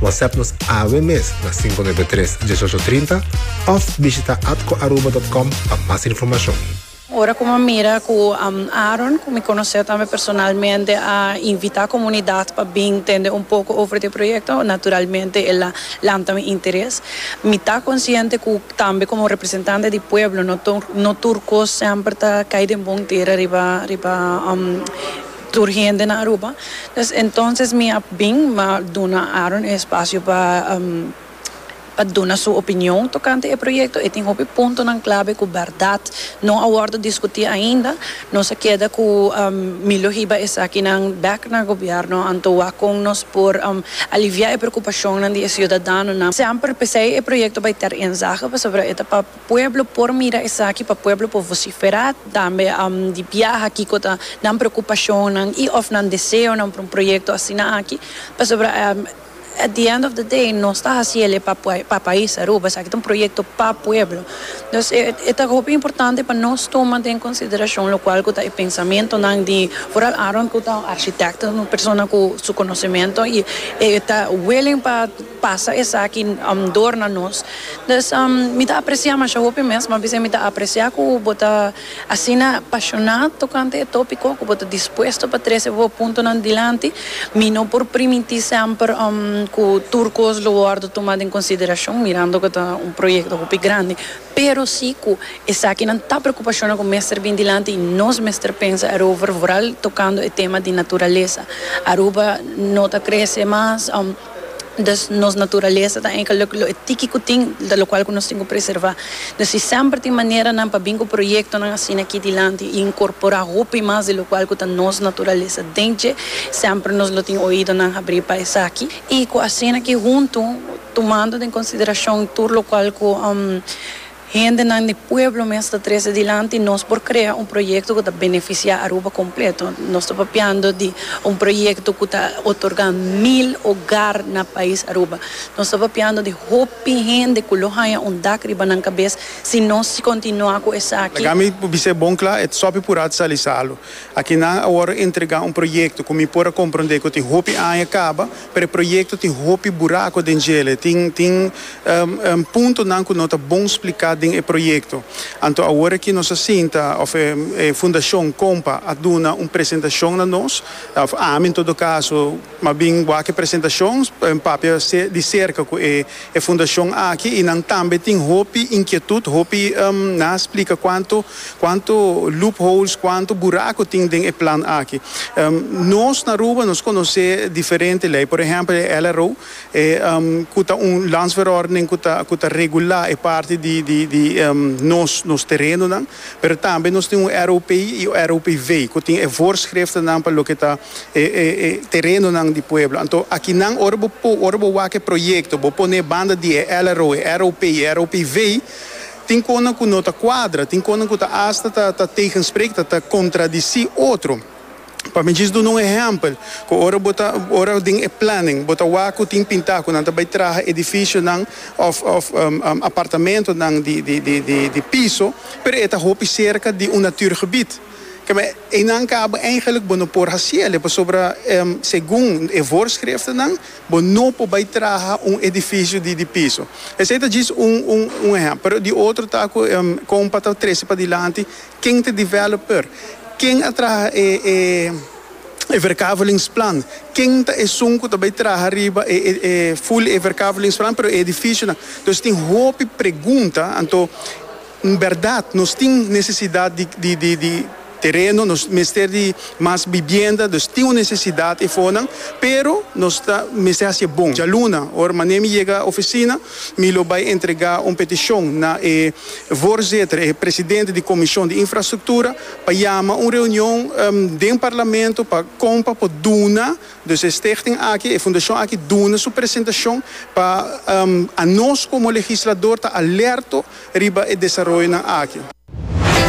Whatsapp nos awe mes na sinku nuebe tres, dieshocho trinta òf bishita atcoaruba.com pa mas informashon. Ora ku mi mira ku Aaron, ku mi konosé tambe personalmente, a invitá komunidat pa bin tende un poko over di e proyekto, naturalmente el a lanta mi interes. Mi ta konsiente ku tambe komo representante di pueblo no tur kos semper ta kai den bon tera riba riba. tur hende na Aruba, dus entonces mi a bin ma duna Aaron e espacio pa pa duna su opinion tocante e proyecto, e tin hopi puntonan clave cu berdad no a wordo discuti ainda, nos a keda cu mi lo hiba esakinan bek na gobierno anto wak con nos por alivia e preocupacionnan di e ciudadanonan. Semper p'esei e proyecto bay ter enzaga pasobra e ta pa. Pueblo por mira esaki pa pueblo por vociferá tambe di biaha kiko ta nan preocupacionnan y of nan deseonan pa un proyecto asina aki, pasobra at the end of the day nos ta haci ele pa pa pais Aruba, esaki ta un proyecto pa pueblo. Entonces e e ta hopi importante pa nos tuma den consideracion locual cu ta e pensamentonan di vooral Aaron cu ta un architecto, un persona cu su conocemento y e ta willing pa. pasa esaki dor na nos dus mi ta aprecia masha hopi mes ma bisai mi ta aprecia cu bo ta asina pasiona tocante e topico cu bo ta dispuesto pa trece bo puntonan dilanti mi no por primiti semper cu tur cos lo wordo tuma den consideracion mirando cu ta un proyecto hopi grandi pero si cu esakinan ta preocupacionnan cu mester bin dilanti y nos mester pensa erover vooral tocando e tema di naturaleza Aruba no ta crece mas. Des nos naturalesa ta enka lo lo e tiki ku tin ta lokual ku nos tin ku preservá. Des si semper tin maneranan pa bin ku proyektonan asina aki dilanti i inkorporá hopi mas di lokual ku ta nos naturalesa den dje, semper nos lo tin oídonan abrí pa esaki i ku asina aki huntu tumando den konsiderashon tur lokual ku. Hendenan di pueblo mes ta trese dilanti, nos por krea un proyekto ku ta benefisiá Aruba kompleto. Nos ta papiando di un proyekto ku ta otorgá mil ogar na pais Aruba. Nos ta papiando di hopi hende ku lo haña un dak riba nan kabes si nos si kontinuá ku esaki. Laga mi por bis'é bon kla, e Tsopi Purá sa alisa lo. Akinan awor a entregá un proyekto ku mi por a komprondé ku tin hopi aña kaba, Preproyekto tin hopi buraco den djele, tin tin puntonan cu no ta bon splica den e proyekto. Anto awor aki nos a sinta of e Fundacion Compa a duna un presentacion na nos, of ami en todo caso, mas bien wak e presentacion papia di cerca cu e E fundacion aki y nan tambe tin hopi inquietud, hopi na a splica cuanto cuanto loopholes, cuanto buraco tin den e plan aki. Nos na Aruba nos conoce diferente ley, por ehempel e LRO e cu ta un landsverordening cu ta cu ta regula e parti di di di nos nos terenonan. Pero tambe nos tin un ROP i ROPV ku tin e voorschriftennan pa loke ta e e e terenonan di pueblo. Anto akinan ora bo po ora bo wak e proyekto bo pone banda di e LRO, e ROP i e ROPV tin konan ku no ta kuadra, tin konan ku ta asta ta ta tegensprek, ta ta kontradisí otro. Pa mi djis duna un ehèmpel, ku ora bo ta, ora den e planning bo ta wak ku tin pintá ku nan ta bai traha edificionan òf òf apartamentonan di di di di di piso, pero e ta hopi serka di un natuurgebied. Kema, einan kaba eigenlik bo no por hasi alí pasobra segun e voorschriftennan bo no por bai traha un edificio di di piso. Esei ta djis un un un ehèmpel, pero di otro ta ku kompa ta trese padilanti, Ken ta e developer? Ken a traha e verkavelingsplan? Ken ta esun ku ta bai traha riba e full e verkavelingsplan pero e edifisionan? Dus tin hopi pregunta. Anto N bèrdat nos tin nesesidat di tereno, nos mester di mas bibienda, dus tin un nesesidat efonan, pero nos ta mester hasi e bon. Djaluna, ora manemi yega ofisina, mi lo bai entregá un petishon na e. voorzitter, e presidente di Comision di Infrastructura, pa yama un reunion den Parlamento pa con pa por duna, dus e stichting aki, e fundacion aki duna su presentacion pa anos como legislador ta alerto riba e desaroyonan aki.